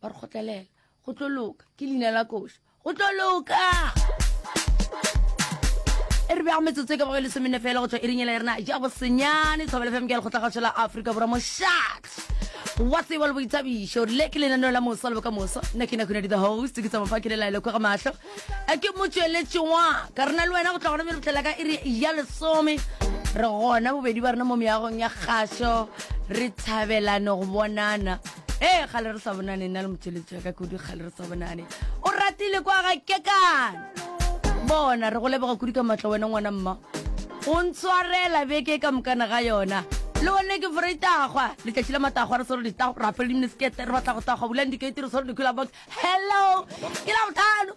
ba re kgotlelela go tlo loka ke leina la koša go tlo loka e re bjago metsotso e ka bago e lesomenne fela go tswa e rinyela ya rena ja bosenyane tshwabele fm ke ya lekgotla gašo la aforika borwa moshat wa tsebo le boithabišo le ke lenaneo la mosa le boka moso nna ke nakune di the host ke tsamafakele laelo kwa ga matlho a ke mo tšweletše wa ka rena le wena go tla gona bjale botlhela ka iri ya lesome re gona bobedi ba rena mo meagong ya kgašo re thabelane go bonana ee gale re sa bonane nna le motšweletši wa ka kudu gale re sa bonane o ratile kwa ga kekana bona re go leboga kudu ka matla wena ngwana mma o ntshwarela beke ka mokana ga yona le one ke fore itagwa letšatši la matagwa re swere ditagwa rapele dimnesekete re batla go tagwa bulang dikete re swere dikula box hello ke la botlhano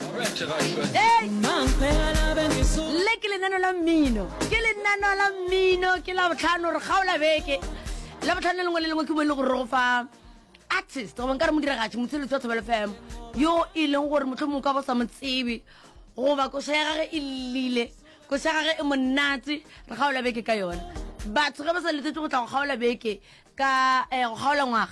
le ke lenano la mmino ke lenano la mmino ke la botlhano re kgaola beke la botlhano lengwe le lengwe ke bo e le gore go fa artist goba nka re modiragatši motsheletsi wa thobelo fm yo e leng gore motlho mongwe ka bo sa mo tsebe goba koša ya gage e lile koša ya gage e monate re kgaola beke ka yone batho ge ba sa letsetse go tla go kgaola beke ka eh, go kgaola ngwaga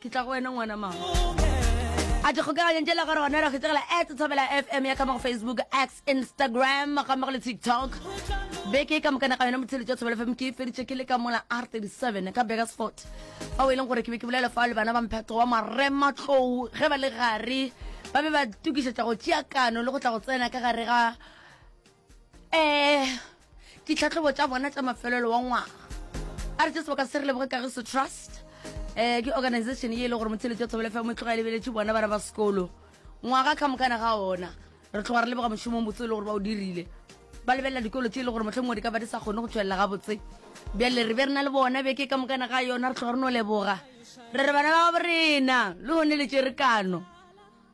ke tla go wena ngwana mama a di kgokaganyang tšela gore gona ra kgetsegela at tshabela fm ya kama go facebook x instagram gamma go le tiktok beke e ka mokana ga yona motshele tša tshabela fm ke e feditše ke le ka mola r 37 ka begasfort ao e leng gore ke be ke bolela fa le bana ba mpheto wa marematlou ge ba le gare ba be ba tokišetša go tšeakano le go tla go tsena ka gare ga um ditlhatlhobo tša bona tša mafelelo wa ngwaga a re tse sebaka se re leboge ka ge se trust um ke organization ye e le gore motheletso ya thobele fa mo tloga e lebeletše bona ba re ba sekolo ngwaga ka mokana ga ona re tloga re leboga mošomong botse e le gore ba o dirile ba lebelela dikolo tse e le gore motlho mongwe di ka ba di sa kgone go tswelela gabotse bjale re be re na le bona beke ka mokana ga yona re tloga re no leboga re re bana ba borena le gone le tše re kano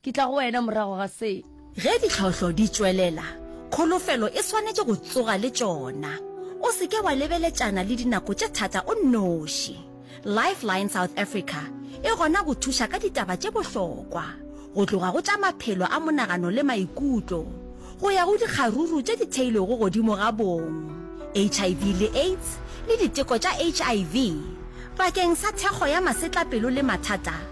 Ke tla go wena morago ga se. Ge ditlhohlo di tšwelela, kholofelo e swanetše go tsoga le tšona. O se ke wa lebeletšana le dinako tše thata o nnoši. Lifeline South Africa e gona go thuša ka ditaba tše bohlokwa, go tloga go tša maphelo a monagano le maikutlo, go ya go dikgaruru tše di theilwego godimo ga bong, HIV le AIDS le diteko tša HIV, bakeng sa thekgo ya masetlapelo le mathata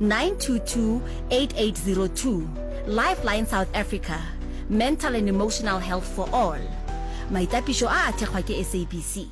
922-8802, Lifeline South Africa, Mental and Emotional Health for All. Maitapišo a a thekgwa ke SABC.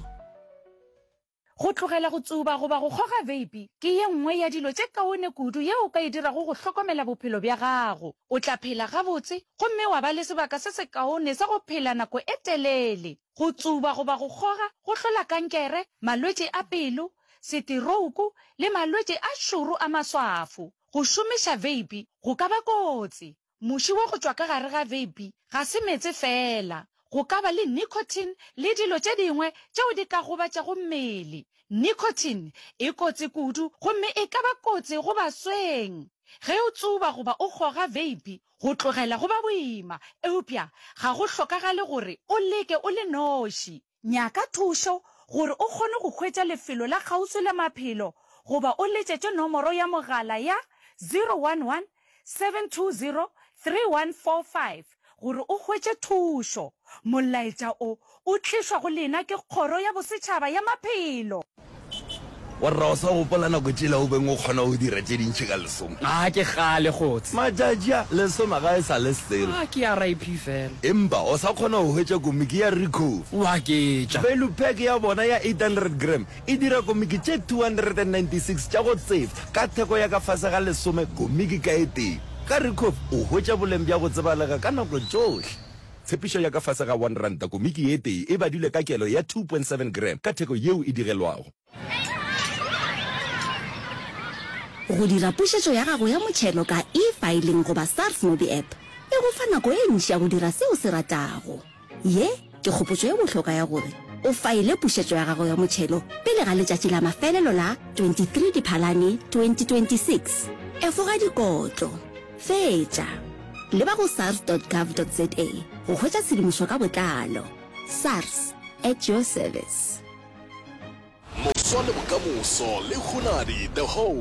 Go tlogela go tsuba goba go kgoga veipi ke ye nngwe ya dilo tše kaone kudu yeo o ka e dirago go hlokomela bophelo bja gago. O tla phela gabotse gomme wa ba le sebaka se sekaone sa go phela nako e telele. Go tsuba goba go kgoga go hlola kankere, malwetši a pelo, setirouku le malwetši a šoro a maswafo. Go šomiša veipi go ka ba kotsi. Muši wa go tšwa ka gare ga veipi ga se meetse feela. Go ka ba le nicotine le dilo tše dingwe tšeo di ka gobatšago mmele. Nicotine e kotsi kudu gomme e ka ba kotsi go basweng. Ge o tsuba goba o goga veipi, go tlogela go ba boima. Eupša ga go hlokagale gore o leke o le noši. Nyaka thušo gore o kgone go hwetša lefelo la kgauswi la maphelo goba o letšetše nomoro ya mogala ya 011 720 3145 gore o hwetše thušo. Molaetša o o tlišwa go lena ke Kgoro ya Bosetšhaba ya Maphelo. Warra o sa gopola nako tšela o beng o kgona go dira tše dintši ka lesome? Ga ke kgale kgotse. Matšatši a, lesome ga e sa le selo. A ke a RIP fela. Empa o sa kgona go hwetša komiki ya Ricoh? Wa ke tša. Value pack ya bona ya 800 gram e dira komiki tše 296 tša go tseba ka theko ya ka fase ga lesome komiki ka e tee. Ka Ricoh o hwetša boleng bja go tsebalega ka nako tšohle. Tshepišo ya ka fase ga R1, komiki ye tee e badilwe ka kelo ya 2.7 gram ka theko yeo e digelwago. Go dira pušetšo ya gago ya motšhelo ka e-filing goba SARS MobiApp e go fa nako e ntši ya go dira se o se ratago. Ye ke kgopotšo e bohlokwa ya gore o faile pušetšo ya gago ya motšhelo pele ga letšatši la mafelelo la 23 Diphalane 2026. Efoga dikotlo. Fetša. Leba go sars.gov.za go hwetša tshedimošo ka botlalo. Sars, at your service. Moso le bokamoso le hunadi the whole.